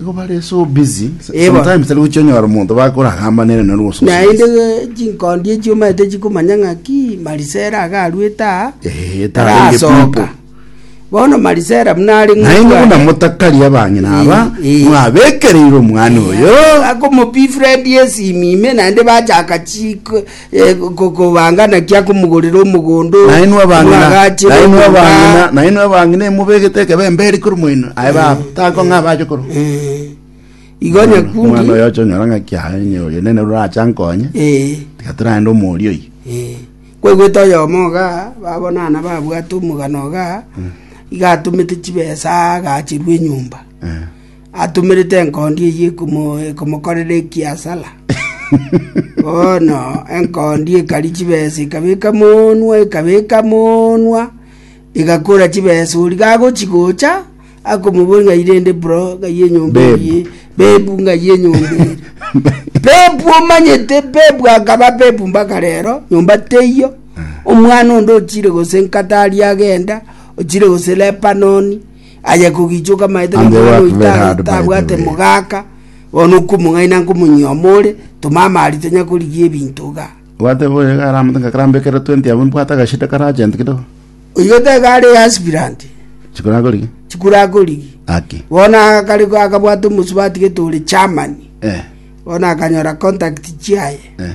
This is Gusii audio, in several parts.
Igo bare so busy. S- Eba. Sometimes tari gochionyora omonto bakoragamba nere nero gose naende eh, chinkondi echio omanyete chikomanya ng'aki marisera agaruete aa Eh, tarenge tarasoka people. bono marisera buna are Naye ng'otu ngokona aye. motakari abang'ina aba Eh, eh. mwabekereire omwana oyo. akomopifrendi esimi ime naende bachaka chiko eh, ko- ko- kobanga naki akomogorera omogondo nainwe abang'ina omwagache nainwe nomonga. abang'ina nainwe abang'ina emubegete ekebembe eri kori moino aye baba takong'a abache koro Eh, igo omwana nyakundi oyo ochonyora ng'aki aye nye oyo nene ruracha nkonye eh, tiga turaende omori oyi eh. kwaigwete oyomo iga babonana babwate omogano iga iga atomete chibesa agachirwa enyomba Eh. atomerete enkondi eyio ekomokorera ekiasara. Bono enkondi ekaria chibesa, ekabeka monwa, ekabeka monwa, egakora chibesa. Oria gagochi gocha akomobori ng'ai rende bro, ng'ai enyomba Bebu. eye, bebu ng'ai enyomba eye. bebu omanyete, bebu akaba bebu mpaka rero, nyomba teiyo. Omwana onde ochire gose nkatari agenda, ochire gose Lebanoni, Aye kogichoka amaete And they nomwana work oito very hard, by the atabwate way. mogaaka, bono nkomong'aini na nkomonyioma ore, tomama aria tonya korigia ebinto iga. Gwateba oyo iga aramate ng'a karambe ekero 20 abwo mbwate agashida kare agent kidogo. Oyio taiga are aspirant, Chikora akorigia. chikura akorigi. Aki. Bono akare akabwata omosubati gete ore Germany. Eh. Bono akanyora contact chiaye. Eh.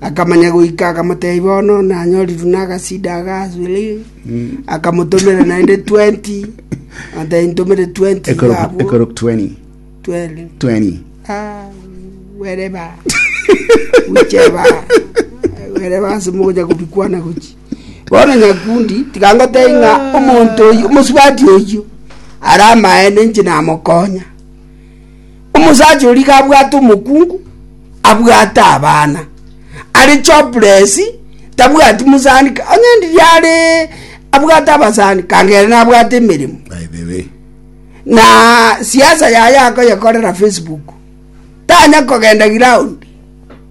Akamanya goika, akamotebia, Bono nanyorirwe nagasida aka ase Lehi. Akamotomera naende twenti, akamotebia, Ntomere twenti Ekorok, bwabwo. ekorok 20. Twere. 20. Ah, wereba ucheba wereba ase mogocha kobikwana gochi bono nyakundi tikangotei ng'a omonto oyio omosubati oyio ara amaene inche namokonya Omosacha oria gabwate omokungu, abwate abana, are jobless, tabwati mosani, ka- onye ndiria are abwate abasani, kangere nabwate emeremo. By the way. Na siasa yaye akoyekorera Facebook. Tanya kogenda ground.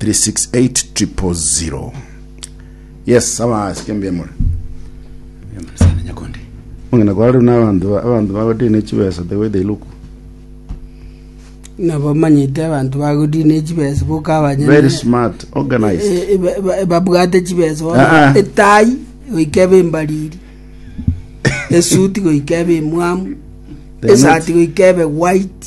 368000 yes abasike mbemore Sana nyakondi. mong'ina kwa rero n'abanto ba- abanto bagotie ne chibesa the way they look nabo manyete abanto bagorie ne chibesa boka abanyene very smart organized Eh, eh, ba- ba- babwate chibesa Ah, ah. etai goika ebe embariri esuti goika ebe emwamu They are not- esati goika ebe white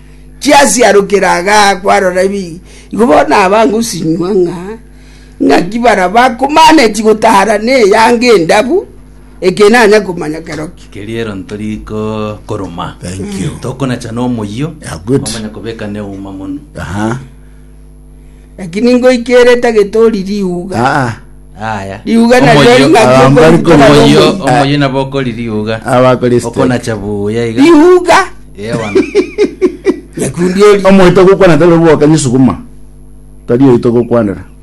Chiasiarokire aga kwarora ebi, igo bono aba ngosinywa ng'a ng'aki baraba komaneti gotara n'eyanga endabu, eke nanya komanya kerokio. Keriero ntori ko koroma. Thank you. Tokonachana omoyio. Yeah, good. Omanya kobeka neuma mono. Aha. Naki ningoikerete agetori riuga. Ah, ah. Aya. Riuga na Omoyio- riori ngaki Abambari okorikora komoyio- Omoyio, omoyio. omoyio nabo okori riuga. Abakora esiteki. Okonacha buya iga. Riuga. Eh, bono. Nyakundi ori. omoito gokwana tari obwokani sukuma tari oito gokwanera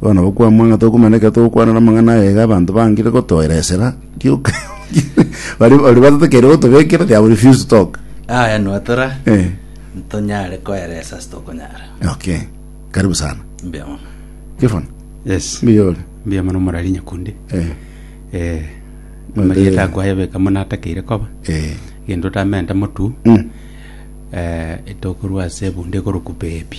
Bono bokwamwa ng'a tokomanya ekero togokwanera amang'ana aya iga abanto bangire gotoera esera, rioka baria baria batotekeire gotobekera they have refused to talk. Aya nwatora Eh, ntonyare koeresa ase tokonyara. okay. Karibu sana. Mbuya mono. Stefan, Yes. mbuya ore. Mbuya mono morari nyakundi. Eh, Eh. Mbuya Marieta ore. akwaye beka muna atakeire koba. eh. Gento tamente motu. Mm. Eh, etokorwa ase ebunde ekoroku baby.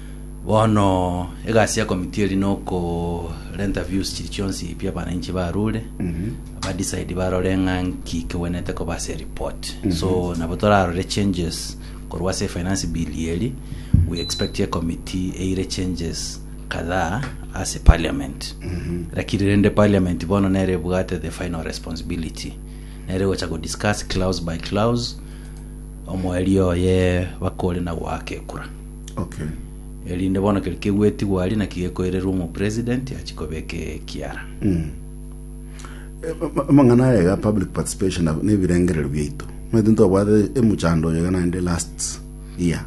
Bono egasi ya committee eri nokorenta views chiri chionsi pi abananchi barure ba decide barore ng'a nki kegwenete koba ase report so nabo torarore changes korwa ase finance bill eri we expect a committee eire changes kadhaa ase parliament lakini rende parliament bono nere ebwate the final responsibility nere gocha go discuss clause by clause omweri oye bakore na goaka ekura Okay. erinde bono keri kegwetigwa aria naki gekoirerwa omopresident achi kobeka ekiara Eh, ma- ma- Amang'ana aya iga public participation na- na ebirengerero biaito. Maete ntobwate emuchando oyo iga naende last year.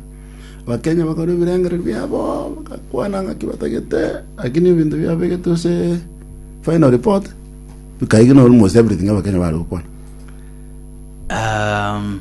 Abakenya bakora ebirengerero biabo bakakwana ng'aki batagete lakini ebinto biabegete ase final report bikaigina almost everything abakenya bare gokwana. um,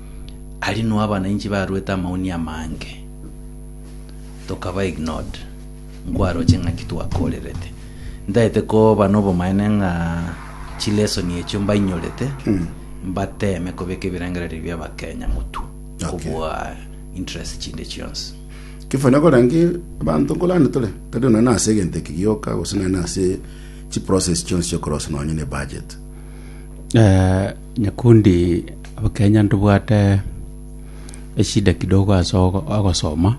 Aria noo abanainchi baruete amauni amange, tokaba ignored, nkwaroche ng'aki twakorerete. Ntaete koba nobomaene ng'a chilesson echio mbainyorete, mbateme kobeka ebirengererio bia Abakenya motwe, kobua interest chinde chionsi. Kefo nakorange abanto nkorande tore tari nonya na ase egento eke gioka gose nonya na ase chiprocess chionsi chiokorosia nonya na ebudget Eh, Nyakundi kenya ntobwate eshida kidogo ase ogosoma,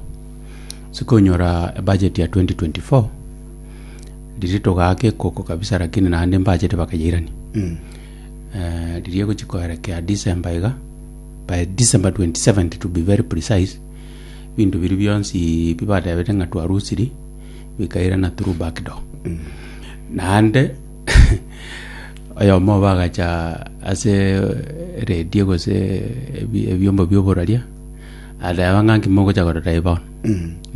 ase konyora ebudget ya 2024, riria togaaka ekoko kabisa lakini naende embudget bakayairania. Riria egochia koerekea December iga, by December 27th to be very precise, ebinto biria bionsi pi batebete ng'a twarusirie, bikairana through back door. Naende Oyomo obo agacha ase radio gose ebi- ebiombo bioboraria ateba ng'a nki mogocha korora eye bono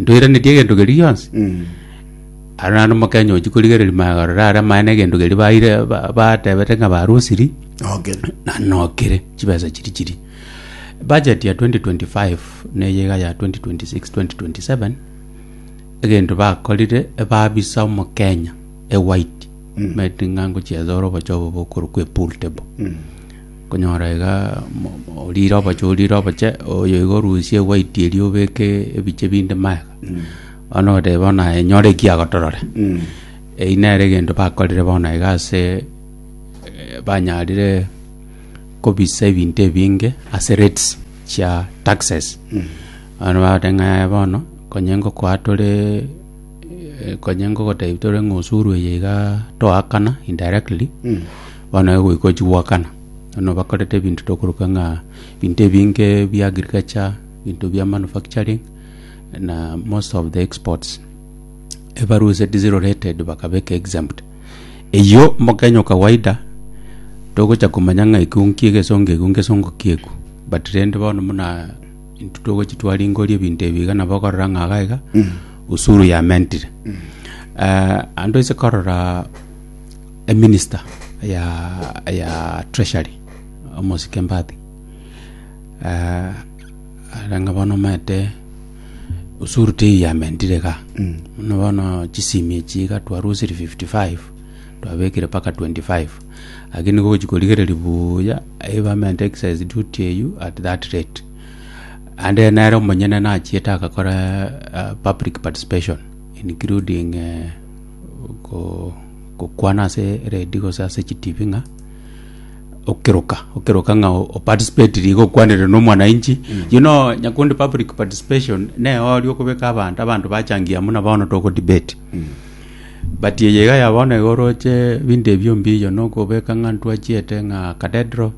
ntoiranetie egento keria gionsi Mm. aro naende omokenya ochi korigereria maya korora are amaene egento keria baire ba- batebete ng'a barusiri Okay. na nokire chibesa chiri chiri budget ya 2025 neye iga ya 2026 2027 egento bakorire ebabisa omokenya ewhite, omanyete ng'a ngochiacha ore obochie obo bokorokwa epool table. Okonyora iga mo- mo- orire obochie orire obochie, oyo iga orusie ewhite eria obeke ebichie binde magega. Bono oteba bono aye nyore eki agotorore. Eyio nere egento bakorire bono iga ase eh, banyarire kobisa ebinto ebinge ase rates chia taxes. Bono bagotebi ng'a yaya bono, konye ngokoa tore. Eh, Konya ngogotebi tore ng'a osuru eye iga toakana indirectly bono igo goika ochigoakana bono bakorete ebinto tokoroka ng'a ebinto ebinge bia agriculture ebinto bia manufacturing na most of the exports ebarwa ase diesel related bakabeka exempt eywo mokenya o kawaida togocha komanya ng'a ekio nki egesongo ekio ngesongo kiekwa but rende bono buna. Intwe togochi twaringoria ebinto ebi iga nabo okorora ng'a iga iga usuru yamentire Eh, ande toise korora eminister ya ya treasury omosike mbati Eh, are ng'a bono omanyete usuru teiyamentire iga buna bono chisimi echi iga twarusirie 55 Twabekire mpaka 25 Ake nigo ogochia korigereria buya Abaement Excise Duty eyio at that rate and then nere omonyene nachiete agakora uh, public participation including uh, ko- gokwana ase redi gose ase chitibi ng'a okiruka okiruka ng'a o- oparticipatiri igo okwanire na omwananchi you know nyakundi public participation neyori okobeka abanto abanto bachangia muna bono tokodebate But eye iga ya bono iga oroche ebinto ebio mbiyo na okobeka ng'a ntwachiete ng'a cathedral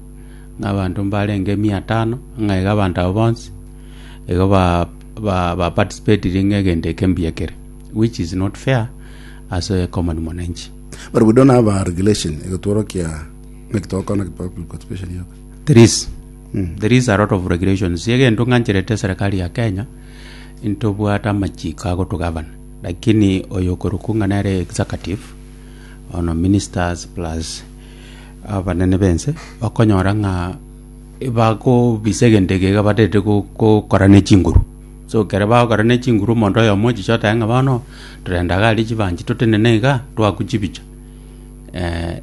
ng'a abanto mbarenge mia tano ng'a iga abanto abwo bonsi igo ba ba ba participatire ng'a egento eke mbuya kere which is not fair ase common mwananchi. But we don't have a regulation egotworokia naki togokora naki public participation yoka. There is there is a lot of regulations egento ng'ancherete serikali ya Kenya intobwate amachiko agotogavana. Lakini oyokorokwa ng'a nere executive, bono ministers plus abanene b'ense, bakonyora ng'a bagobisa egento eke iga baterete go- gokora ne chinguru. So ekero bagokora ne chinguru omonto oyomo ochiche otae ng'a bono, torenda iga aria chibanchi totenene iga, twaakwa chibicha.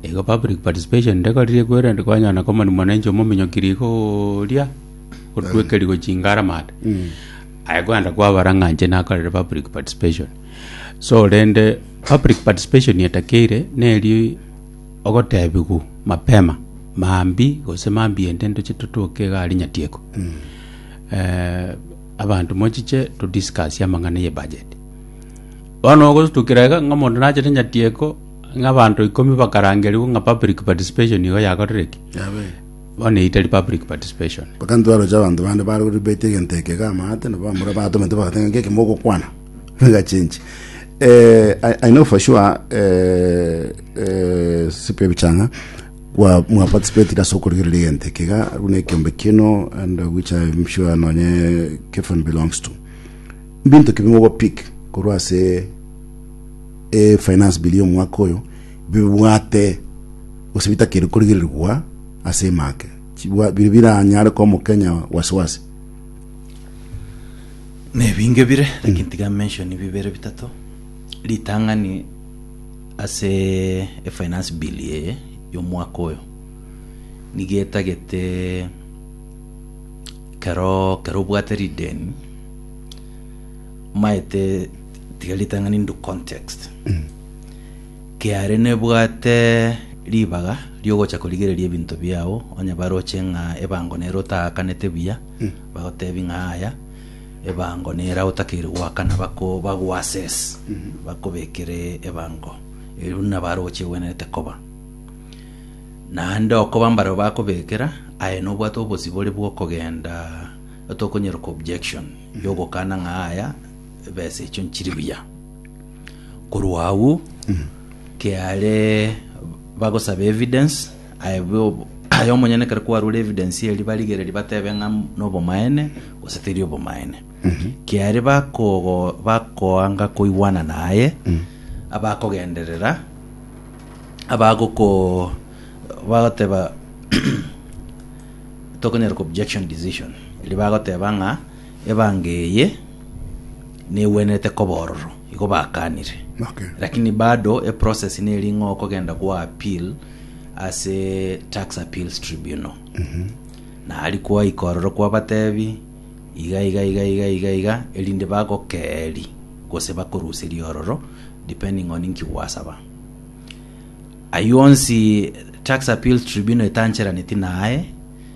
igo public participation ndekorire kwerende kwanyora na common mwananchi omominyoki rigoria, gotwekerigwa chingara maate. Aye kwenda kwabara ng'a inche nakorire public participation. So rende public participation etakeire neri ogotebigwa mapema mambi gose mambi ende ndoche totoke iga aria nyatieko. Eh, abanto mochiche to discuss amang'ana ye budget. Bono ogosutukera iga ng'a omonto nachete nyatieko ng'a abanto ikomi bakarangerigwa ng'a public participation igo yakorire ki? Amen. Bono eyio tari public participation. Mpaka intwe aroche abanto bande bare gori baite egento eke iga amaate, nabo abamura abatomete bagoteba ng'a nkeki mogokwana niga chinchi. Eh, I, I know for sure eh, eh, Cyprian Bichang'a kwa mwa participate ase okorigereria egento eke iga buna ekiombe kino and uh, which I'm sure nonye Kefon belongs to. Binto ki bimogopick korwa ase e finance bill y'omwaka oyo bibwate gose bitakeire korigererigwa ase emake, chibwa- bire biranyare komokenya wasiwasi. Nebinge bire, lakini tiga mention bibere bitato. Ritang'ani ase efinance bill eye y'omwaka oyo nigo etagete kero kero obwate rideni omaete tiga ritang'ani into context. Kiare nebwate ribaga riogocha korigereria ebinto biao, onye baroche ng'a ebango nero otaakanete buya, bagotebi ng'a aya, ebango nera otakeire goakana, bako bagoassess, bakobekere ebango eri buna baroche egwenerete koba. Naende okoba mbarabwo bakobekera, aye nobwate obosibore bw'okogenda otokonyeroka objection, yogokana ng'a aya, ebesa echio nchiri buya. Korwa agwo kiare bagosaba evidence aye bo- aye omonyene ekero kwarure evidence eria barigereria batebe ng'a nobomaene gose teri obomaene kiare bakogo bakoanga koigwana naye abakogenderera abagoko bagoteba tokonyara ko objection decision eri bagoteba ng'a Ebango eye negwenerete koba ororo, igo bakanire. Lakini bado e process neri ng'a okogenda gwa appeal ase Tax Appeals Tribunal. Na aria kwaika ororo kwabatebi iga iga iga iga iga iga erinde bagokeri gose bakoruserie ororo depending on inki gwasaba. Ayio onsi Tax Appeals Tribunal etancheraneti naye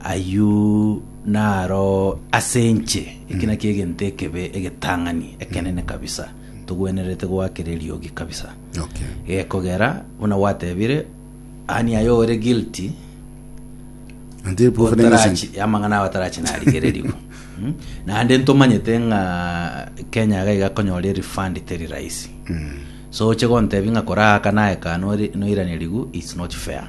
Ayio naro ase inche, eki nakio egento ekebe, egetang'ani ekenene kabisa, togwenerete goakera eriogi kabisa. Okay. Gekogera buna gwatebire, ani aye ore guilty, Until proven innocent. Otarachi- amang'ana ao atarachi narigererigwe Mm. naende ntomanyete ng'a kenya iga igakonyora erefund teri rahisi so oche gontebi ng'a kora aka naye ka nori- noiranerigwe its not fair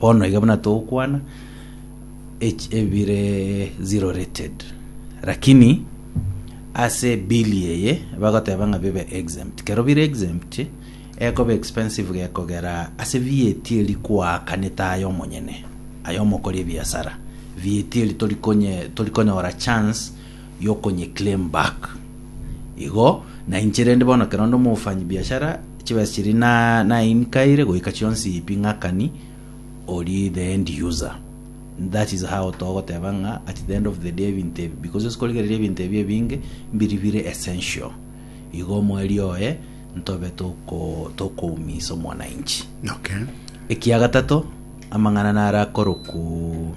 Bono iga buna togokwana echi- ebire ziroreted lakini ase bill eye bagoteba ng'a bibe exempt kero bire exempt ekoba expensive gekogera ase VAT eri koakanete aye omonyene aye omokori ebiasara VAT eri tori konye- tori konyora chance y'okonyeclaim back. Igo nainche rende bono ekero onde omofanyi biashara chibesa chiria na nainkaire goika chionsi pi ng'akani ori the end user that is how togoteba ng'a at the end of the day ebinto ebi because ase korigereria ebinto ebi ebinge mbiri bire essential igo omweri oye ntobe toko tokoumisa omwananchi Okay. ekiagatato amang'ana naro akorokwo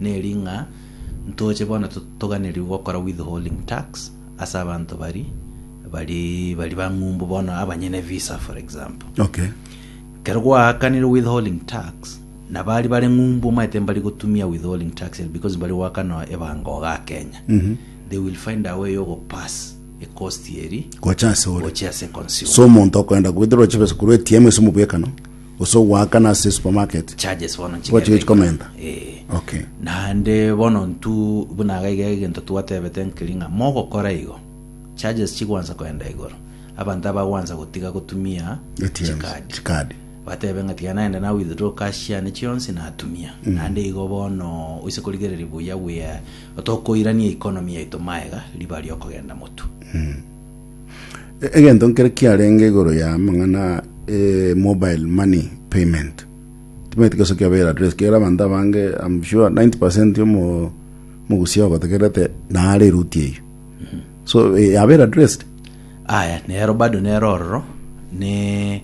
Neri ng'a ntoche bono toganerigwe gokora withholding tax ase abanto bari bari bari bang'umbu bono abanyene visa for example. Okay. Kero gwaakanire withholding tax na bari bare ng'umbu omaete mbari gotumia withholding tax ere because mbari goakana ebanga ogaa Kenya. They will find a way yogo pass e cost eri Gocha ase ore. gochia ase consumer. So omonto okoenda goetera oche besa korwa ATM ase omobwekano. gose ogoakana ase supermarket charges bono gocha gochia nchigende komenta eh okay naende bono ntu buna iga iga egento twatebete nkeri ng'a mogokora igo charges chigwansa koenda igoro abanto abagwansa gotiga gotumia ATMs, chikadi chikadi batebe ng'a tiga naende na withdraw cash yane chionsi natumia naende igo bono oise korigereria buya we are tokoirania economy yaito maega riba riokogenda motu Egento nkere kiarenge igoro ya amang'ana eh, mobile money payment timaeti gose kiabere address kera abanto abange I'm sure 90% yomo mogusia ogotegerete naare eruti eyo so eh, yabere addressed aya nero bado nero ororo ne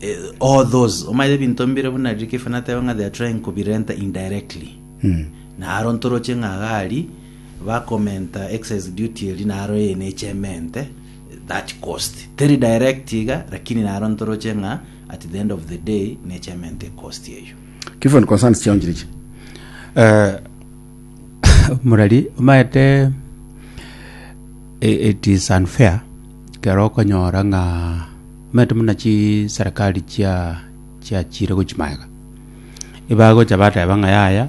eh, all those omaete ebinto mbire buna riria kefa nateba ng'a they are trying kobirenta indirectly naro ntoroche ng'a gari Bakomenta excise duty eri naro eye neche emente that cost. Teri direct iga lakini naro ntoroche ng'a at the end of the day neche emente cost eyio. Kifoni concerns chionchiri ichi. Eh, omorari omaete eh, it is unfair kero okonyora ng'a omaete muna chiserekari chia chiachire gochia maega ebagocha bateba ng'a yaya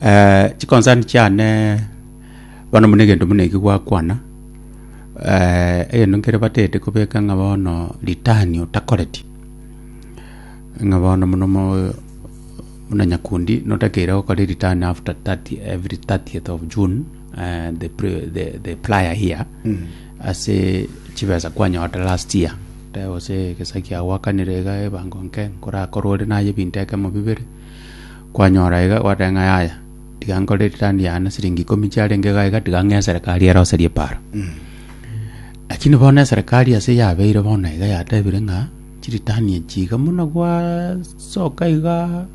Eh, chikonsani chiane bono buna egento buna eki gwakwana eh, egento nkere batete kobeka ng'a bono ritani otakoreti ng'a bono mono mo buna nyakundi notakeire gokora eritani after 30 every 30th of june eh, the, pre- the, the prior year ase chibesa kwanyorete last year tebe gose egesa kiago gwakanire iga ebango nke nkorakore ore naye ebinto ekemo bibere Kwanyora iga, gwateba ng'a yaya, tiga nkore return yane na siringi ikomi chiarenge iga iga, tiga ng'ee eserekari eroserie epaaro. Lakini bono eserekari ase yabeire bono iga yatebire ng'a chiritani echi iga buna gwasoka iga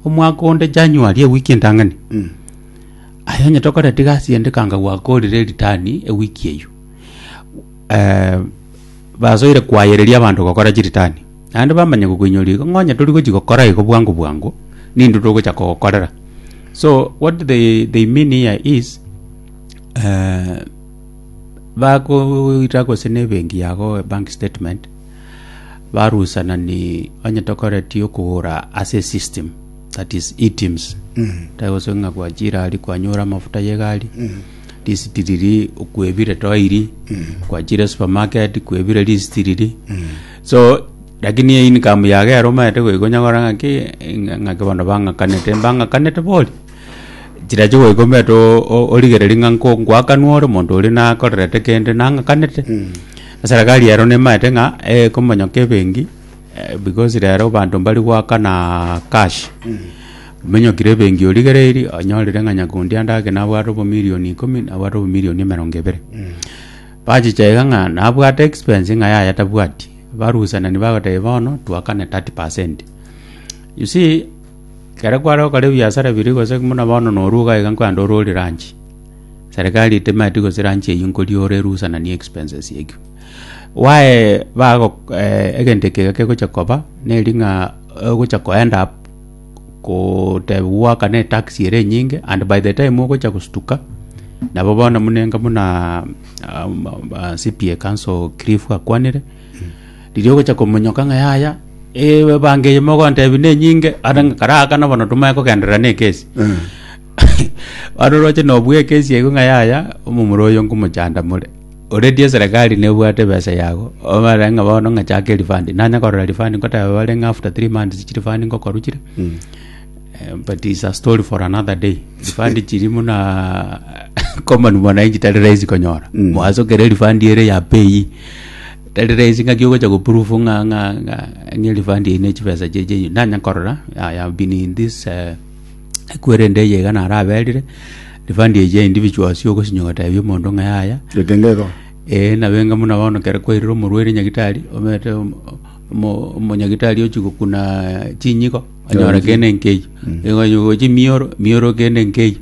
omwaka onde January ewiki entang'ani, aye onye tokoreti gasi ende ekanga gwakorire eritani ewiki eywo basoire kwayereria abanto gokora chiritani. Naende bamanye gokoinyoria igo, ng'onye tori gochi gokora igo bwango bwango, nintwe togocha kogokorera. So what they, they mean here is eh, bakoira gose nebenki yago a bank statement barusana ni onye tokoreti okogora ase system that is eteams tagose ng'a gwachira ari kwanyora amafuta yegari lisiti riri kwebire toiri kwachire supermarket kwebire lisiti riri So, rakini eye income yago yaromanyete goika onyakora ng'aki, ng'a- ng'aki bono bang'akanete, mbang'akanete bori? Chirache goika omanyete o- o- origereri ng'a nko ngoakanwa ore omonto oria nakorerete kende nang'akanete. Eserakari ero nemanyete ng'a ekomonyoka ebenki, eh, because rero abanto mbari goakana cash. Omenyokire ebenki origereiri, onyorire ng'a nyakundi ande ake nabwate obomilioni ikomi, nabwate obomilioni emerongo ebere. Bachicha iga ng'a nabwate expense ng'a yaya tabwati, barusenani bagoteba bono twakane 30 percent. You see, ekero kware gokora ebiasara biria gose buna bono norwa iga iga nkwenda ore ore lunch, serikari etemeti gose lunch eyio nkoria ore erusenanie expenses ekio. Why bago egento eke iga kegocha koba, neri ng'a ogocha koend up. kotebia goakana etaxi ere enyinge and by the time ogocha gostuka nabo bono munenga buna um, uh, CPA council Cliff akwanire riria ogocha komonyoka ng'a yaya ewe bange eye mogontebi nenyinge ata ng'a karaakana bono tomae kogenderera na ekesi ano roche nobua ekesi ego ng'a yaya omomura oyo nkomochanda more Oreti eserekari nebwate ebesa yago, obare ng'a bono ng'a chaka erifandi, nanya korora rifandi ngoteba bare ng'a after three months chirifandi ngokorwa chire, eh, but is a story for another day. Rifandi chiri muna common mwananchi tari rahisi konyora. Mwasokera erifandi ere ya pei, tari rahisi ng'aki ogocha goproof ng'a ng'a ng'a ng'a erifandi eye ne chibesa chiaye chiaye. Nanya korora, I have been in this eh, Ekweri ende eye iga naraberire, rifandi echi ya individuals yogosinyo ogatebia omonto ng'a yaya, Getenge igo. Ee, nabo enga buna bono kere kwairire omorwaire nyagitari, omanyete omo- omo- omonyagitari ochia gokuna chinyigo, onyora Yonsi. kende nkeyio. Igo onye gochia emioro, emioro kende nkeyio.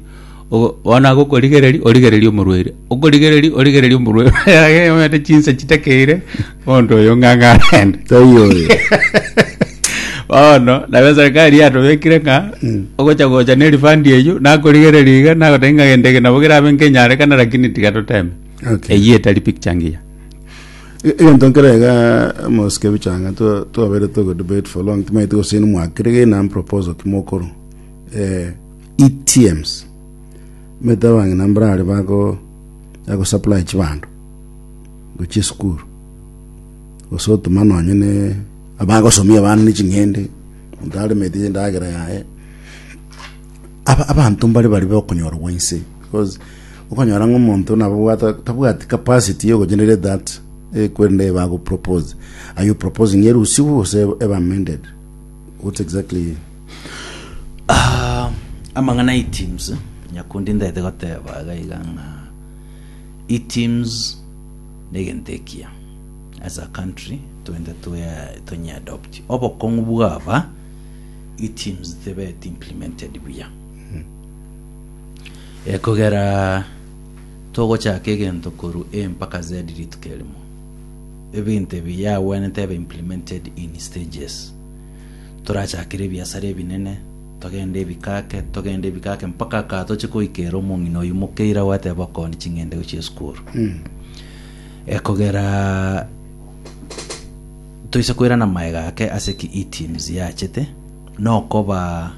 Ogo- bono agokorigereria, origereria omorwaire, okorigereria, origereria omorwaire, omanyete chinsa chitakeire. Monto oyo ng'ang'a arende. Taiyo oyo. Bono nabo eserikari yatobekire ng'a ogocha gocha ne refund eyio nakorigereria iga nagoteba ng'a gento eke nabo kerabe nkenyarekana lakini tiga toteme. Okay. Eyio etari picture ngiya. E- egento nkere iga mosike bichanga twa- twabere togo debate for long timaeti gose nimwakire ge nam proposal kimokorwa eh, etms mete abang'ina mbarare bago bago supply chibanto gochia esukuru gose otoma nonye ne abagosomia abana ne ching'ende monto aremeti endagera yaye aba abanto mbare bari bokonyorwa inse because okonyora ng'a omonto nabo obwate tabwati capacity ya ogogenerate that ekwende bago propose are you proposing erusiwu gose ebe amended what exactly Ah, amang'ana iteams nyakundi ntaete goteba iga iga ng'a Iteams negento ekiya as a country twende twe tonye adopt obokong'u bwaba iteams tebeti implemented buya ekogera togochaka egento koru A mpaka Z rituko erimo ebinto ebi yagwenete ebe implemented in stages torachakire ebiasara ebinene Togende ebikake, togende ebikake mpaka aka toche koika ere omong'ina oyio mokeire agoeteba okoondi ching'ende gochia esukuru. Ekogera toise koirana maega ake ase ki e-teams yachete nokoba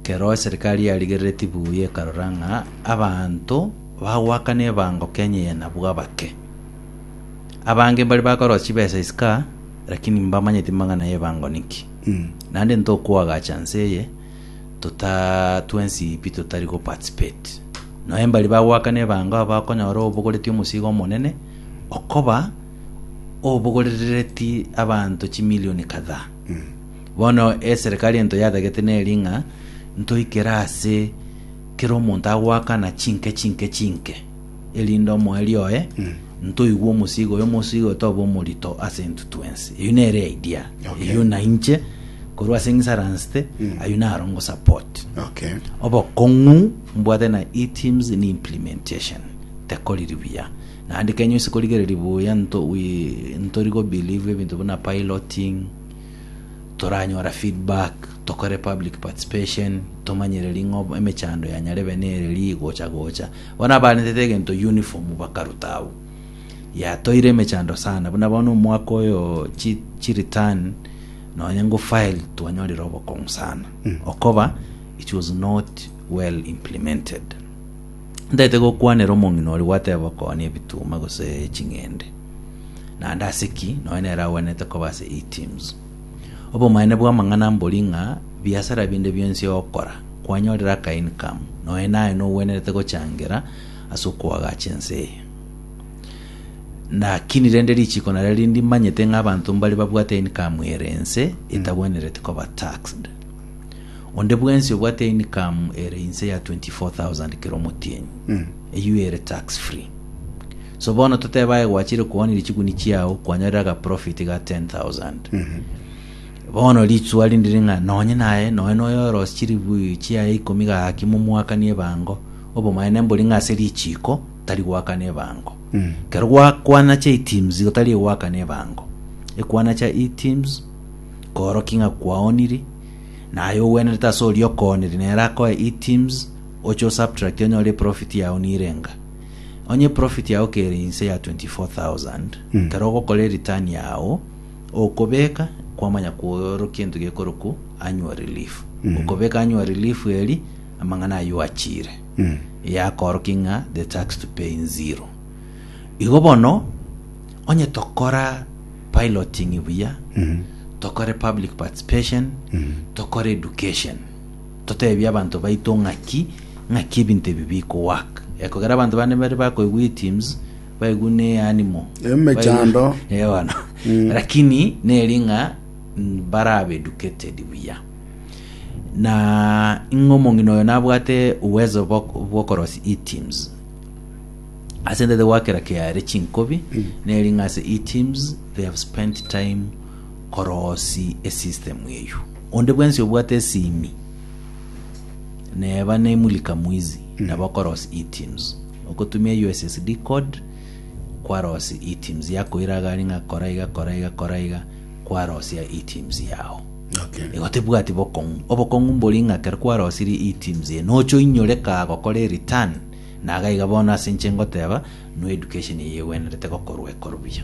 kero eserikali yarigereretie buya ekarora ng'a abanto bagoakana ebango Kenya eye nabwo abake. Abange mbari bakorosia chibesa isiko aa, lakini mbamanyeti mang'ana y'ebango niki. Naende ntokoagacha nse eye tota twensi pi totari go participate. Noe mbari bagoakana ebango aba okonyora obogoreti omosigo omonene okoba obogorerereti abanto chimilioni kadhaa. Bono eserekari ento yatagete neri ng'a ntoikere ase kera omonto agoakana chinke chinke chinke. erinde omoerio oye ntoigwe omosigo oye omosigo oye tobe omorito ase intwe twensi eyio nere idea Okay. eyio na inche korwa ase ng'isaransete ayio naro ngosupport Okay. obokong'u mbwate na eteams ni implementation tekoriri buya naende kenya ase korigereri buya nto we- ntori go believe ebinto buna piloting toranyora feedback tokore public participation tomanyereri ng'o emechando yanyarebe nere ri gocha gocha Bono abarentete egento yunifomu bakaruta agwo. Yatoire emechando sana, buna bono omwaka oyo chi chireturn nonya nko file twanyorire obokong'u sana. Okoba it was not well implemented. Ntaete gokwanera omong'ina oria gwateba okonia ebituma gose ching'ende. Naende ase ki nonya nere agwenerete koba ase E-teams. Obomanene bw'amang'ana mbori ng'a biasara binde bionsi ogokora, kwanyorire aka income, nonya naye nogwenerete gochangera ase okoagacha ense eye. Lakini rende richiko nario rinde manyete ng'a abanto mbare babwate income ere ense etagwenereti koba taxed. Onde bwensi obwate income ere inse ya 24,000 kera omotienyi, eyio ere tax free. So bono totebe aye gwachire koonia richuguni chiao kwanyorire agaprofiti ga 10,000. Bono rituwa rinde riri ng'a nonye naye noe noyorosia chiribu chiaye ikomi gaki momoakanie ebango, obomaene mbori ng'a ase richiiko tari goakana ebango. Kero gwakwana chia iteams igo tari egoakana ebango. Ekwana chia iteams koorokia ng'a kwaoniri, naye ogwenerete ase oria okoonire nere akoe iteams, oche osubtract onyore eprofiti yaao nirenga. Onye eprofit yao kere inse ya 24,000, ekero ogokora ereturn yao, okobeka kwamanya kwoorokia egento gekorokwa annual relief. Okobeka annual relief eri, amang'ana ayio oachiire, yakoorokia ng'a the tax to pay in zero. Igo bono, onye tokora piloting buya, tokore public participation, tokore education, Toteebie abanto baito ng'aki ng'aki ebinto ebi bikowork. Eh, kogera abanto bande mbare bakoigwa iteams, baigwa ne animal. Emechando. Eh, bono. Lakini neri ng'a mm, barabe educated buya. Na ing'e omong'ina oyo nabwate uwezo bw'ok- bw'okorosia iteams. Ase ndete gwakera kiare chinkobi, neri ng'a ase iteams they have spent time korosi esystem eyio. Onde bwensi obwate esimi neba ne mulika mwizi nabo okoros eTIMS. Okotumia USSD code kwaros eTIMS yakoira agari ng'a kora iga kora iga kora iga kwarosia eTIMS yao. Okay. Igo tebwati bokong'u. Obokong'u mbori ng'a kero kwarosirie eTIMS eye nocha oinyore ka gokora ereturn na iga iga bono ase inche ngoteba no education eye egwenerete gokorwa ekorwa buya.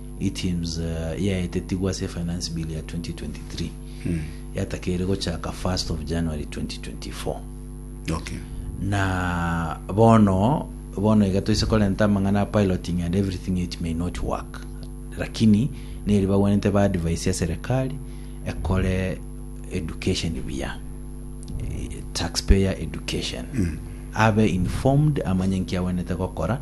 Items yaetetigwe ase efinance bill ya 2023 yatakeire gochaka 1st of January 2024. Okay. Na bono bono iga toise korenta amang'ana a piloting and everything it may not work. Lakini neri bagwenerete ba advice ya serikali ekore education buya. Eh, Taxpayer education. Abe informed amanye nki agwenerete gokora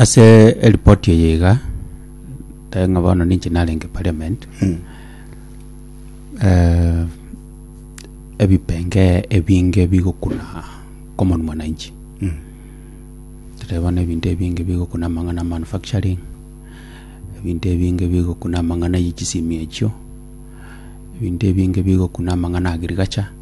Ase eripoti eye iga, tari ng'a bono ninche narenge parliament, eh, ebipenge ebinge bigokuna common mwananchi. Totebe bono ebinto ebinge bigokuna amang'ana a manufacturing, ebinto ebinge bigokuna amang'ana ye chisimi echio, ebinto ebinge bigokuna amang'ana a agriculture.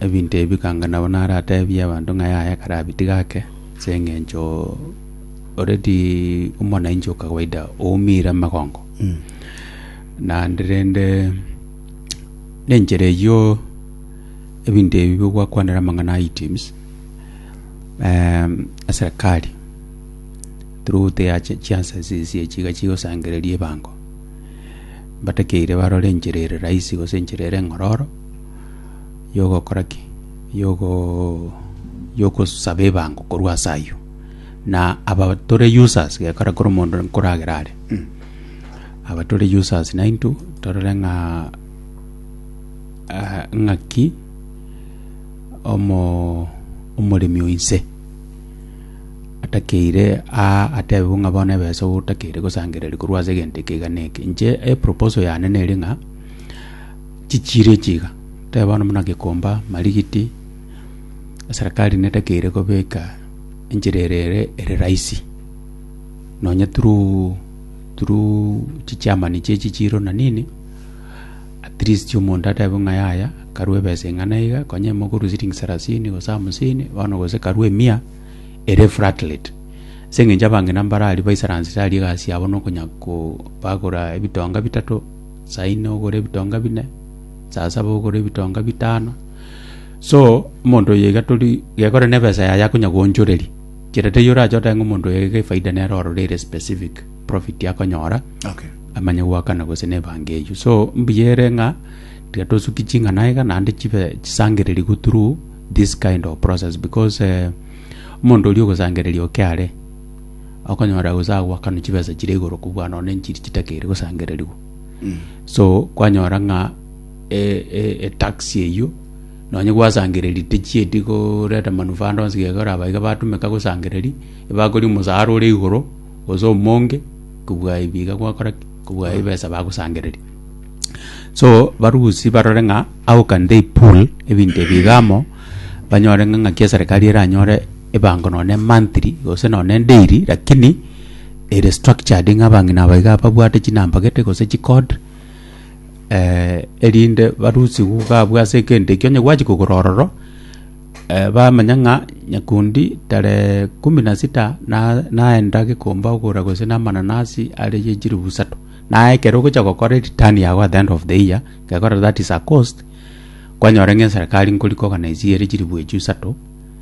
Ebinto ebi bikanga nabo narateebie abanto ng'a yaya kare abitige ake, ase engencho already omonainchi o kawaida oumire amagongo. Naende rende na enchera eyio ebinto ebi bigwakwanera amang'ana a items em, eserekari through their chiansenses echi iga chigosangereria ebango mbatakeire barore enchera ere rahisi gose enchera ere eng'ororo. yogokora ki? Yogoo yogosaba ebango korwa ase ayio. Na aba tore users gekora kore omonto nkoragera are mm. Aba tore users naintwe torore ng'a ah, ng'aki omo omoremi oinse atakeire a atebe bo ng'a bono ebesa otakeire gosangereria korwa ase egento eke iga na eke. Inche eproposal yane nere ng'a. Chichiiri echi iga, tebe bono buna Gikomba, Marigiti, eserekari nedekeire kobeka enchera ere ere ere rahisi, nonye through through chichairman chie echichiiro na nini, at least omonto atebe ng'a yaya karue ebesa eng'ana iga, konya ime okorwa siling sarasini gose hamsini bono gose karue emia ere flat rate. Ase eng'encho abang'ina mbararia baisaransete aria egasi yabo nokonya ko bagora ebitonga bitato. Saa ine ogore ebitonga bine, saa saba ogore ebitonga bitano. So omonto oyo iga tori gekore na ebesa yaye akonya goonchoreria. Kere taiyo orache otoe ng'a omonto oyo iga efaida nere orore ere specific profit akonyora Okay. amanye goakana gose na ebango eyio. So mbuya ere ng'a tiga tosuki ching'ana iga naende chibe chisangererigwe through this kind of process because eh, omonto oria ogosangereria oke are okonyora gose agoakanwa chibesa chire igoro kobua nonya nchiri chitakeire gosangererigwa so kwanyora ng'a e- e- etax eyio nonya gwasangereri techieti goreta manufaa ande onsi geka oraba iga batumeka gosangereri ebakori omosara ore igoro gose omonge kobua ebi iga gwakora ki kobua ebesa bagosangereria so barusi barore ng'a how can they pool ebinto ebi iga amo banyore ng'a ng'aki eserekari eranyore. ebango nonye monthly gose nonye daily lakini ere structured ng'a abang'ina aba iga babwate chinamba gete gose chicode erinde barusigwe iga abwo ase egento ekio onye gwachia kogora ororo bamanya ng'a nyakundi tarehe kumi na sita na- naenda gikomba kogora gose na amananasi are ya chilifu isato naye ekero ogocha gokora eritani yago at the end of the year gekogera that is a cost kwanyora ng'a eserekari nkori koganaisie ere chilifu echio isato.